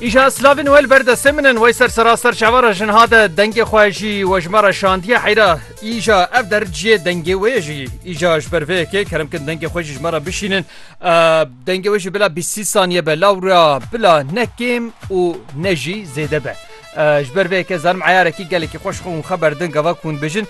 Îşa Slavin wel berdestê min in wey ser seraster çavara jin hade dengê xwe jî wejmara şandiye heyra îja ev der ciyê dengê wê jî îja ji ber vê yekê keremkin dengê xwe jî ji me re bişînin dengê wê jî bila bîsî saniye be lawra bila ne kêm û ne jî zêde be. Ji ber vê yekê zanim eyarekî gelekî xweş xwe û xwe berdin gava ku hûn dibêjin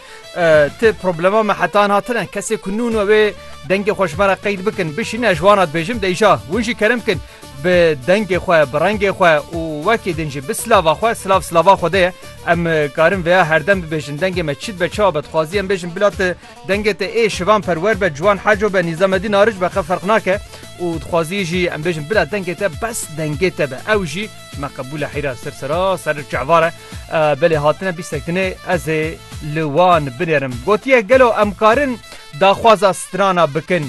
ti problema me hetan hatine kesê ku nûn wê dengê xwe ji me re qeyd bikin bişîne ji wan dibêjim deyja hûn jî kerim bikin bi dengê xwe bi rengê xwe û wekî din jî bi silava xwe silav silava xwe de ye em karin veya herdem dibêjin dengê me çi dibe çawa be dixwazî em bêjin bila te dengê te ê şivan perwer be ciwan heco be nîzamedî naric be xeferq nake û dixwazî jî em bêjin bila dengê te bes dengê te be ew jî Me qebûle heyra ser sera ser çevar e. Belê hatine bîstek dinê ez ê li wan binêrim. Gotiye gelo em karin daxwaza strana bikin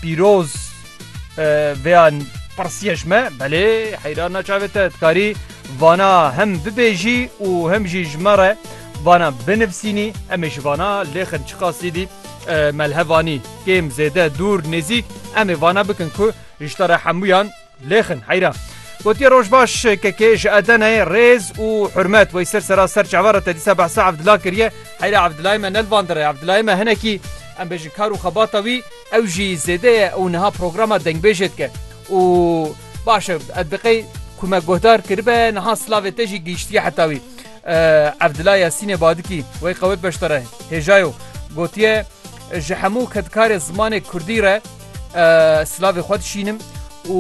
pîroz vêya pirsiye ji me belê heyra naçavê te dikarî vana hem bibêjî û hem jî ji me re vana binivsînî em ê ji vana lêxin çiqasî dî melhevanî kêm zêde dûr nêzîk em ê vana bikin ku ji te re hemûyan Lêxin heyra gotiye roj baş KK ji Edeneyê rêz û hurmet wey ser sera ser çava re te dîsa behsa Evdila kiriye heyra Evdilayê me nelvandire Evdilayê me hinekî em bêjin kar û xebata wî ew jî zêde ye û niha programa dengbêjê dike û baş e ez diqey ku me guhdar kiribe niha silavê te jî gihîştiye heta wî Evdila Yasînê Badikî wey qewet beşdare hêjayo gotiye ji hemû kedkarê zimanê Kurdî re Silavê xwe dişînim û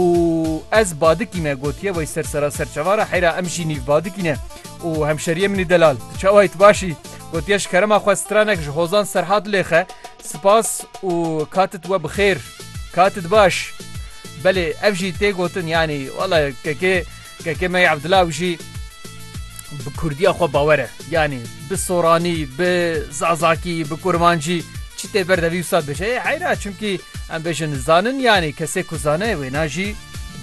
ez badikî me gotiye wey ser sera ser çavara heyra em jî nîv badikî ne û hemşeriye minî delal çawayî tu başî gotiye ji kerema xwe stranek ji hozan serhat lêxe spas û katit we bi xêr katit baş belê ev jî tê gotin yanî wala kekê Kekeme yê Abdulaw jî bi Kurdiya xwe bawer e. Yanî bi Soranî, bi Zazakî, bi Kurmancî çi tê ber de vî wisa dibêje ê heyr e çimkî em bêjin zanin yanî kesê ku zane wêna jî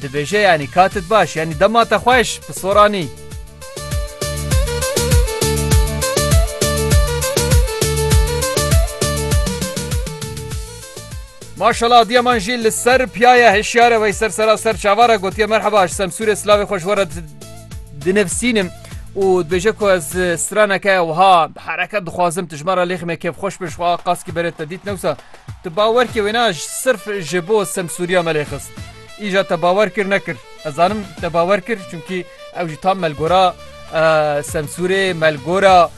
dibêje yanî katit baş yanî dema te xweş bi Soranî. Maşallah diyeman jî li ser piyaya hişyare wey ser sera ser çavara gotiye merheba ji semsûrê silavê xweş were dinivsînim û dibêje ku ez straneke wiha hereket dixwazim tijmara lêxi me kêfxweş bin xwa qaskî berê te dît newsa tu bawerkê wêna sirf ji bo semsûriya me lê xist îja te bawer kir nekir ez zanim te bawer kir çunkî ew jî tam melgora semsûrê melgora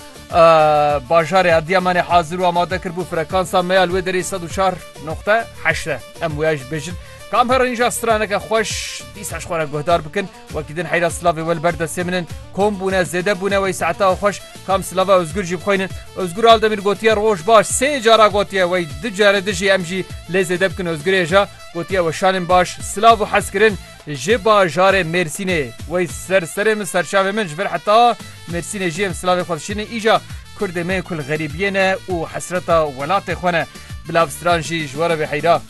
Bajarê Edîyamanê hazir û amade kir bû frekansa me ya li wê derê sed û çar noqte heşt e. Em wêya jî bêjin. Kam her rênja straneke xweş dîsa ji xwe re guhdar bikin. Wekî din heyra silavê we li ber destê min in. Kom bûne, zêde bûne wey saetewa xweş. Kam silava Ozgur jî bixweynin. Ozgur Aldemîr gotiye roj baş. Sê cara gotiye wey du care dijî em jî lê zêde bikin Ozgurê ja. Gotiye weşanên baş, silav û hezkirin. Ji bajarê Mêrsînê wey ser serê min serçavê min ji ber heta Mêrsînê jî em silavê xwe dişînin îca kurdê me ku li xerîbiyê ne û hesreta welatê xwe ne. Bila bi stran jî ji we re bê heyra.